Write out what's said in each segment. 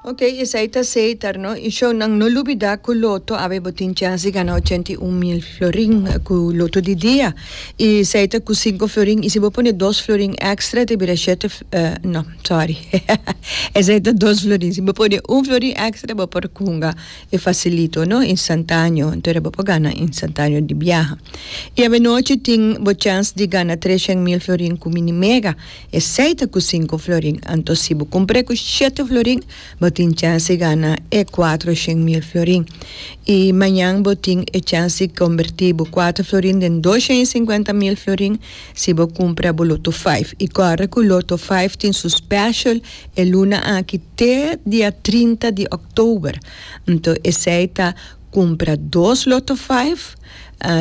Ok esai ta seitar no y show nan no lubida cu loto awe bo tin chance di gana ochenta y un mil florin cu loto di dia y esai ta cu cinco florin y si bo pone dos florin extra ta bira shete no sorry esai ta dos florin si bo pone un florin extra bo por hunga y facilito no instantaneo entera bo por gana instantaneo di biaha y awe nochi tin bo chance di gana treshen mil florin cu mini mega. Esei ta cu cinco florin, anto si bo cumpr'e cu siete florin bo tin chance di gana e cuatro shen mil florin. Y mañan bo tin e chance di comberti bo cuatro florin den dos shen y cincuenta mil florin si bo cumpra bo Lotto Five. Y corre cu Lotto Five tin su special e luna aki te dia trinta di Oktober. Anto esei ta cumpra dos Lotto Five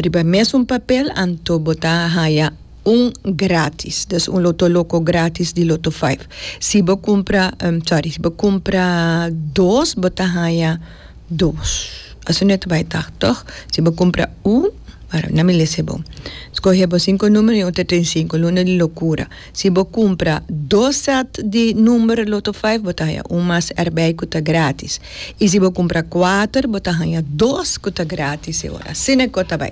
riba e mesun papel anto bo ta haya. Un gratis des un loto loco gratis di loto five si bo cumpra sorry si bo cumpra dos bo ta haya dos asina e ta bay tah toch si bo cumpra un wara nan mi lese bo scoge bo cinco numero y un ta trae cinco luna di locura si bo cumpra dos set di numero loto five bo ta haya un mas erbey cu ta gratis y si bo cumpra cuater bo ta haya dos cu ta gratis e ora asina e cosa ta bay.